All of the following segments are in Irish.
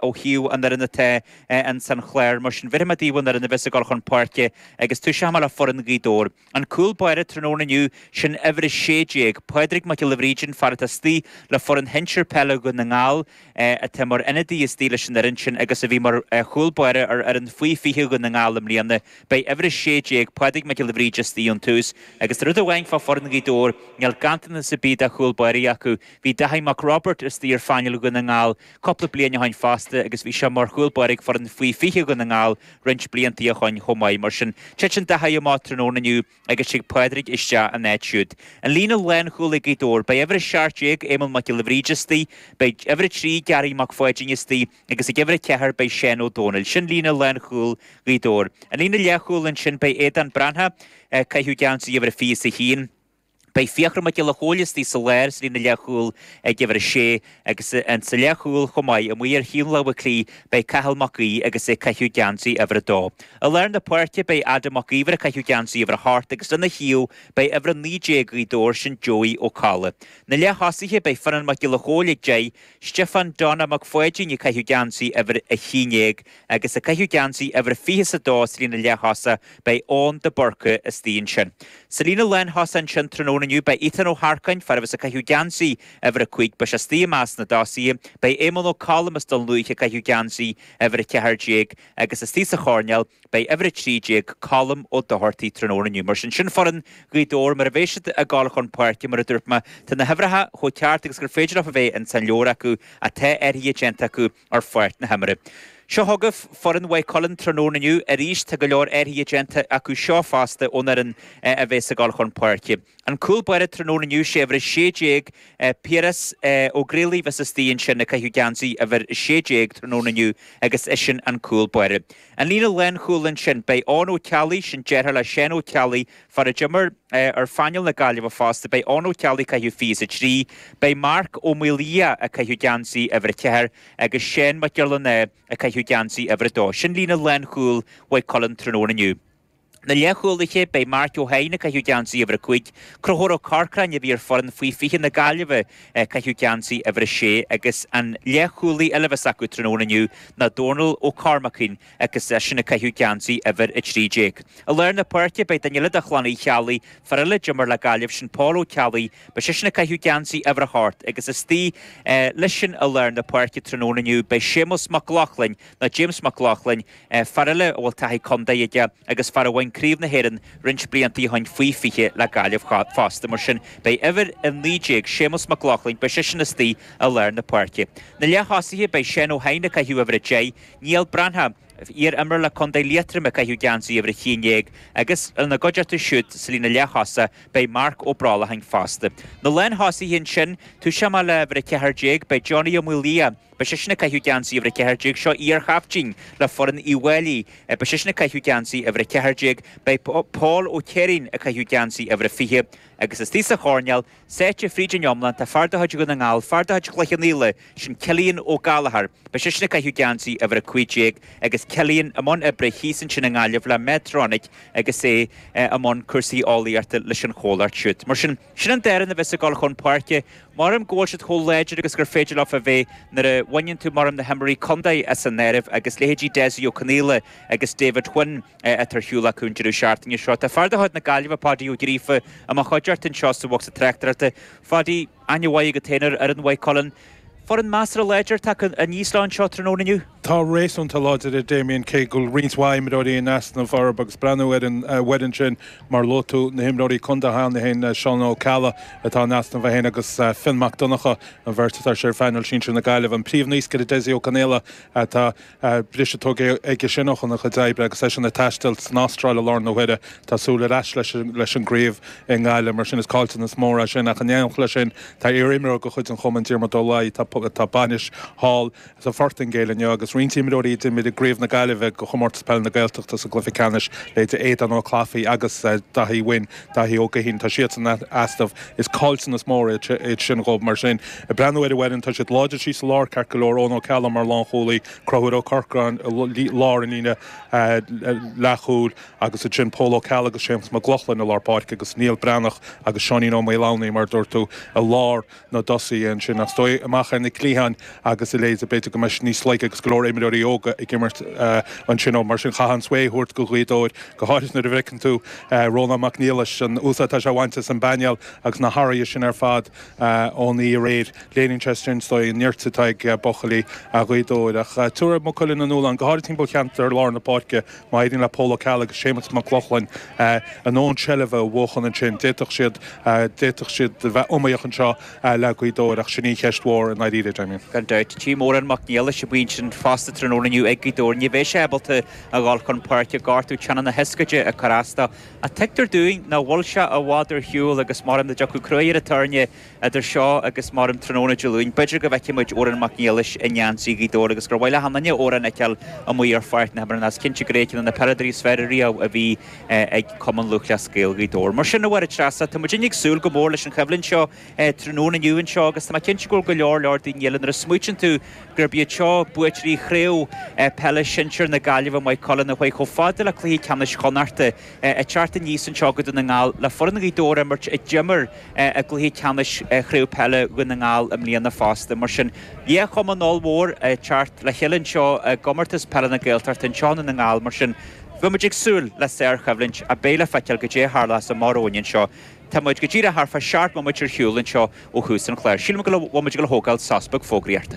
ó thaobh an fhoireann atá ann san chlár. Mar sin, bhéarfaimid daoibh an fhoireann a bheas ag dul chun páirce agus toiseochaimid le foireann Ghaoth Dobhair. An cúl báire tráthnóna inniu, sin uimhir 16, Pádraig Mac Giolla Bhríde, an fear atá istigh le foireann shinsir peile Dhún na nGall, atá mar ionadaí istigh leis an fhoireann sin agus a bhí mar chúl báire ar fhoireann Faoi 20 Dhún na nGall i mbliana. Beidh uimhir 16, Pádraig Mac Giolla Bhríde, istigh ón tús agus tá rud amháin fá foireann Ghaoth Dobhair, níl ganntanas ar bith de chúl báirí acu. Bhí Dáithí Mac Roibeaird istigh ar phainéal Dhún na nGall cúpla bliain ó shoin fosta agus bhí sé mar chúl báire ag foireann Faoi 20 Dhún na nGall roinnt bliantaí ó shoin chomh maith. Mar sin, titeann Dáithí amach tráthnóna inniu agus tig Pádraig isteach ina áit siúd. An líne lánchúil ag Gaoth Dobhair, beidh uimhir 17 Éamonn Mac Giolla Bhríde istigh, beidh uimhir 3 Gary Mac Pháidín istigh agus ag uimhir 4 beidh Seán Ó Domhnaill. Sin líne lánchúil Ghaoth Dobhair. An líne leathchúil ansin, beidh Aodán Breathnach ag caitheamh geansaí uimhir a 21, Beidh Fiachra Mac Giolla Chóill istigh sa lár sa líne leathchúil ag uimhir a sé agus ins an leathchúil chomh maith, amuigh ar thaobh na láimhe clí, beidh Cathal Mac Aoidh agus é ag caitheamh geansaí uimhir a dó. I lár na páirce beidh Adam Mac Íomhair ag caitheamh geansaí uimhir a hocht agus lena thaobh beidh uimhir a naoi déag Gaoth Dobhair sin Joey Ó Cadhla. Na leath-thosaithe beidh Fionnán Mac Giolla Chóill ag deich, Stiofán Donna Mac Pháidín ag caitheamh geansaí uimhir a haon déag agus ag caitheamh geansaí uimhir 22 sa líne leathtosach, beidh Eoin de Búrca istigh ansin. Sa líne lánthosach ansin tráthnóna inniu, beidh Ethan Ó hEarcáin, fear a bheas ag caitheamh geansaí uimhir a cúig, beidh sé istigh i measc na dtosaithe. Beidh Éamonn Ó Colm as Dún Lúiche ag caitheamh geansaí uimhir 14 agus istigh sa choirnéal beidh uimhir 13, Colm Ó Dochartaigh tráthnóna inniu. Mar sin, sin foireann Ghaoth Dobhair mar a bheidh siad ag dul chun páirce. Mar a dúirt mé, tá na huimhreacha chomh ceart agus gur féidir leofa bheith ins an leabhar acu, ach tá athruithe déanta acu, ar pháirc na himeartha. Seo chugaibh foireann Mhaigh Cuilinn tráthnóna inniu. Arís, tá go leor athruithe déanta acu seo fosta ón fhoireann a bheas ag dul chun páirce. An cúl báire tráthnóna inniu, sé uimhir a sé déag, Piaras Ó Griallais, a bheas istigh ansin ag caitheamh geansaí uimhir a sé déag tráthnóna inniu agus eisean an cúl báire. An líne lánchúil ansin, beidh Eoin Ó Ceallaigh, sin deartháir le Seán Ó Ceallaigh, fear a d'imir ar phainéal na Gaillimhe fosta, beidh Eoin Ó Ceallaigh ag caitheamh 23, beidh Marc Ó Maolaodha ag caitheamh geansaí uimhir 4 agus Seán Mac Giollarnáth ag caitheamh geansaí uimhir 2. Sin líne lánchúil Mhaigh Cuilinn tráthnóna inniu. na leathchúlaithe, beidh Marc Ó hEidhin ag caitheamh geansaí uimhir a cúig, Conchúr Ó Corcráin a bhí ar foireann faoi 20 na Gaillimhe ag caitheamh geansaí uimhir a sé agus an leathchúlaí eile a bheas acu tráthnóna inniu ná Dónal Ó Cormacáin agus eisean ag caitheamh geansaí uimhir a trí déag. I lár na páirce, beidh duine eile de chlann Uí Cheallaigh, fear eile a d'imir le Gaillimh, sin Pól Ó Ceallaigh, beidh seisean ag caitheamh geansaí uimhir a hocht agus istigh leis-sean i lár na páirce tráthnóna inniu beidh Séamus Mac Lochlainn, nó James Mac Lochlainn, fear eile a bhfuil taithí contae aige agus fear a bhain Craobh na hÉireann roinnt blianta ó shin faoi 20 le Gaillimh fosta. Mar sin, beidh uimhir 19, Séamus Mac Lochlainn, beidh seisean istigh i lár na páirce. Na leath-thosaithe, beidh Seán Ó hEidhin ag caitheamh uimhir 10, Niall Breathnach, iar-imreoir le contae Liatroma, ag caitheamh geansaí uimhir 11 agus, ina gcuideachta siúd sa líne leath-thosaigh, beidh Marc Ó Brollacháin fosta. Na lánthosaithe ansin, tosóidh mé le huimhir 14, beidh Johnny Ó Maolaodha, Beidh seisean ag caitheamh geansaí uimhir a ceathair déag, seo iarchaiftín le foireann Uíbh Fhailí. Beidh seisean ag caitheamh geansaí uimhir a ceathair déag. Beidh Paul Ó Céirín ag caitheamh geansaí uimhir a fiche. Agus istigh sa choirnéal, sáite fríd an iomlán, tá fear de chuid Dhún na nGall, fear de chuid Chloich Cheann Fhaola, sin Cillian Ó Gallchóir. Beidh seisean ag caitheamh geansaí uimhir a cúig déag agus Cillian i mbun oibre thíos ansin i nGaillimh le Medtronic agus é i mbun cúrsaí eolaíochta leis an chomhlacht siúd. Mar sin. Sin an dá fhoireann a bheas ag dul chun páirce. Maram go bhfuil siad chomh láidir agus gur féidir leo a bheith nuair a bhaineann tú maram na himreoirí contae as an áireamh agus leithéidí Dessie Ó Conaola agus David Wynne atá ar shiúl acu an deireadh seachtaine seo. Tá fear de chuid na Gaillimhe, Páidí Ó Gríofa, i mo chuideachta anseo sa bhocsa tráchtaireachta. A Pháidí, aithne mhaith agat féin ar fhoireann Mhaigh Cuilinn. Foireann measartha láidir atá acu aníos linn anseo tráthnóna inniu. Tá réasúnta láidir a Damien cé go bhfuil roinnt mhaith imreoirí in easnamh orb agus breathnú ar an bhfoireann sin mar luaigh tú na himreoirí contae cheana féin, Seán Ó Ceallaigh atá in easnamh é féin agus Fionn Mac Donnacha, an bheirt atá siad ar phainéal sinsir na Gaillimhe. An príomh naoscaire Dessie Ó Conaola atá. briseadh tógtha aige sin óna chuid oibre agus eisean ag taisteal san Astráil i láthair na huaire. Tá súil ar ais leis an gcraobh i nGaillimh, mar sin is caillteanas mór é sin, ach in éineacht le sin tá iar-imreoir de chuid an chumainn, Diarmuid Ó Laoi, tá bainis thall sa Phortaingéil inniu agus roinnt imreoirí a d'imir i gcraobh na Gaillimhe de Chomórtas Peile na Gaeltachta sa gcluiche ceannais, leithéidí Aodán Ó Clafaí agus Daithí Wynne. Daithí Ó Gaoithín, Tá siadsan in easnamh. Is caillteanas mór iad sin dhóibh mar sin. Ag breathnú ar an bhfoireann, tá siad láidir síos sa lár, ceart go leor, Eoghan Ó Ceallaigh mar lánchúlaí, Conchúr Ó Corcráin i lár an líne leathchúil agus ansin Pól Ó Ceallaigh agus Séamus Mac Lochlainn i lár páirce agus Niall Breathnach agus Seáinín Ó Maolomhnaigh, mar a dúirt tú, i lár. na dtosaithe ansin, ach is dóigh, amach ar na cliatháin agus a leithéid. B'fhéidir go mbeidís níos laige agus go leor imreoirí óga ag imirt ansin ó. Mar sin, chaithfeá an svae a thabhairt go Gaoth Dobhair, go háirithe nuair a bhfeiceann tú Rónán Mac Niallais, an úsáid atá sé á bhaint as an bpainéal agus na hathruithe sin ar fad ón oíche aréir. Léiríonn sé sin, is dóigh, an neart atá ag buachaillí Ghaoth Dobhair. Ach tabharfaidh Maigh Cuilinn a ndúshlán, go háirithe timpeall cheantar lár na páirce, Má éiríonn le Pól Ó Ceallaigh agus Séamus Mac Lochlainn, a ndóthain seilbhe a bhuachan ansin, d'fhéadfadh siad, d'fhéadfadh siad a bheith iomaíoch anseo le Gaoth Dobhair ach sin í an cheist mhór i ndáiríre, Damien. Gan dabht. Tchím Odhrán Mac Niallais ar an bhinse fosta tráthnóna inniu ag Gaoth Dobhair, ní bheidh sé ábalta a dhul chun páirce, gortú teannán na hioscaide ag cur as dó. Ach tuigtear dúinn nach bhfuil sé i bhfad ar shiúl agus maram dá dtiocfadh crú ar an tairne, Idir seo agus meán tráthnóna Dé Luain, b'fhéidir go bhfeicfidh muid Odhrán Mac Niallais i ngeansaí Ghaoth Dobhair agus gur mhaith le achan duine Odhrán a fheiceáil amuigh ar pháirc na himeartha. Is cinnte gurb é ceann de na peileadóirí is fearr riamh a bhí ag Cumann Lúthchleas Gael Ghaoth Dobhair. Mar sin, a Mháire Treasa, tá muidinne ag súil go mór leis an choimhlint seo tráthnóna inniu anseo agus tá mé cinnte go mbeidh go leor leor daoine eile nuair a smaoitíonn tú gurb iad seo buaiteoirí Chraobh Peile Sinsear na Gaillimhe, Maigh Cuilinn, a chuaigh chomh fada le cluiche ceannais Chonnachta. ag teacht aníos anseo go Dún na nGall le foireann Ghaoth Dobhair a imirt a d'imir i gcluiche ceannais Chraobh Peile Dhún na nGall i mbliana fosta. Mar sin de, dhá chumann ollmhór ag teacht le chéile anseo i gComórtas Peile na Gaeltachta anseo i nDún na nGall. Mar sin, beimid ag súil le sárchoimhlint agus beidh le feiceáil goidé a tharlós amach romhainn anseo. Tá muid go díreach thar fá seacht mbomaite ar shiúl anseo ó thús an chláir. Sílim go bhfuil muid ag gabháil a thógáil sos beag fógraíochta.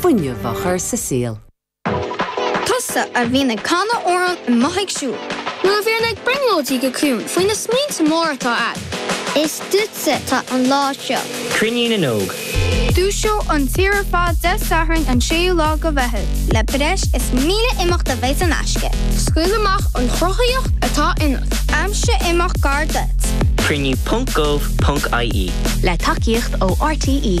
fuinneamh a chur sa saol. Tusa a bhíonn ag canadh amhrán is tú ag siúl. Nó a bhíonn ag brionglóidí go ciúin faoi na smaointe móra atá agat. Is duitse atá an lá seo. Cruinniú na nÓg. Dúiseofar an tír ar fad Dé Sathairn an 6ú lá de Mheitheamh. le breis is 1,000 imeacht a bheidh saor in aisce. Scaoil amach an chruthaitheacht atá ionat. Aimsigh imeacht gar duit. Cruinniú ponc gov ponc ie. le tacaíocht ó RTÉ.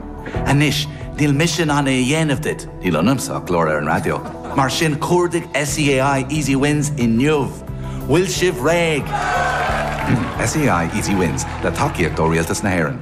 Anois, níl mise in ann é a dhéanamh duit, níl ionamsa ach glór ar an raidió, mar sin cuardaigh SEAI Easy Wins inniu! Bhfuil sibh réidh? SEAI Easy Wins, le tacaíocht ó Rialtas na hÉireann.